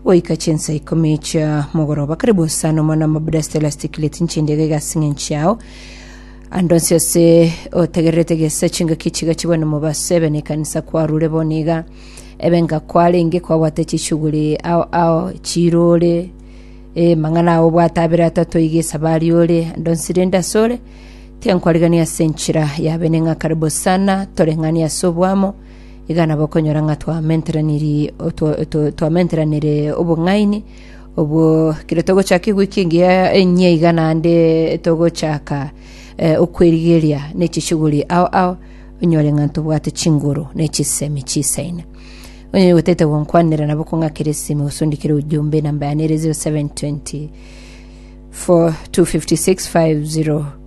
Goika chinsa ikomi chia mogoroba karibu osana omwana wa mabuda stela stikile tinchindiga igasing'a enchiao andonsi ase otegererete gesa chingaki chiga chibone mobaso ebe ne kanisa kwarure boniga ebe nga kwarenge kwabwate chishuguri ao ao chirore e mang'ana ao bwate abere atato iga esabari ore andonsi rende asore tiankwarigania ase enchira yabene ng'a karibu sana toreng'ani ase obwamo Iga nabo okonyora ng'a twamenteraniri- otwa- otwa- twamenteranire obong'aini obwo kero togochaka ewiki engiya enye iga naende togochaka eh, okwerigeria na echishughuli ao ao onyore ng'a ntobwate chinguru na echisemi chisaine onye gotete gonkwanera nabo kong'akera esime osundikire ujumbe namba yane ere 0720 425650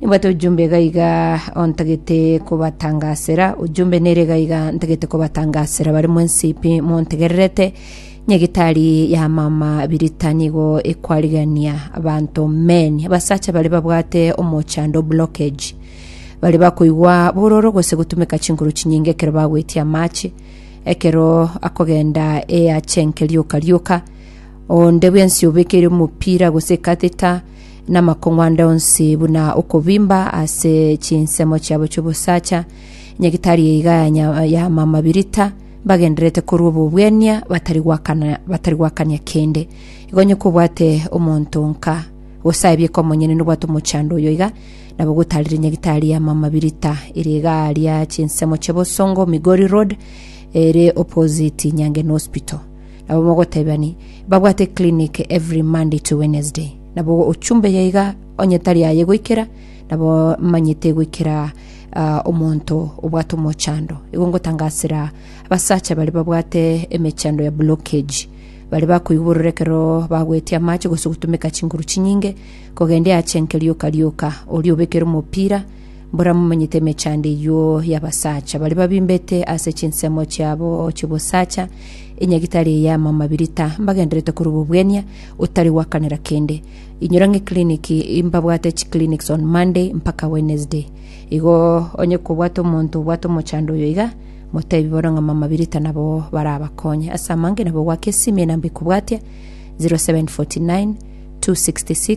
Nimbwate ojumbe iga iga ontagete kobatangasera, ojumbe nere iga iga ntagete kobatangasera bare mwensi pi montegererete. Nyagitari ya mama birita nigo ekwarigania abanto men abasacha bare babwate omochando blockage bare bakoigwa bororo gose gotumeka chinkoro chinyinge ekero bagwetie amache ekero akogenda eachenke rioka rioka onde bwensi obekeire omopira gose catheter namakong'u ande onsi buna okobimba ase chinsemo chiabo chi'obosacha, nyagitari eiga ya nya- ya mamabirita, mbagendererete korwa obobwenia, batari gwakana- batari gwakania kende. Igo onye kobwate omonto nka, gose aye bieka omonyene nobwate omochando oyo iga, nabo gotarire nyagitari ya mamabirita ere igaa ria chinsemo chia Bosongo, Migori Road, ere opposite Nyangeni Hospital. Nabo mogotebani, babwate clinic every Monday to Wednesday. Nabo ochumbe yaiga onye tari aye goikera, nabo manyete goikera omonto obwate omochando. Igo ngotangasera abasacha bare babwate emechando ya blockage, bare bakoigwa bororo ekero bagweti amache gose gotumeka chinguru chinyinge kogendia ache enke rioka rioka, oria obekere omopira Mboramomanyete emechando eyio y'abasacha baria babimbete ase chinsemo chiabo chi'obosacha, enyagitari eye y'amamabirita, mbagenderete korwa obobwenia, otari gwakanera kende. Inyora ng'a eclinic, mbabwate chiclinics on Monday mpaka Wednesday. Igo onye kobwate omonto obwate omochando oyo iga, motebi bono ng'a amamabirita nabo barabakonye. Ase amangina bogwaka esimi, enamba ekobwatia, 0749 266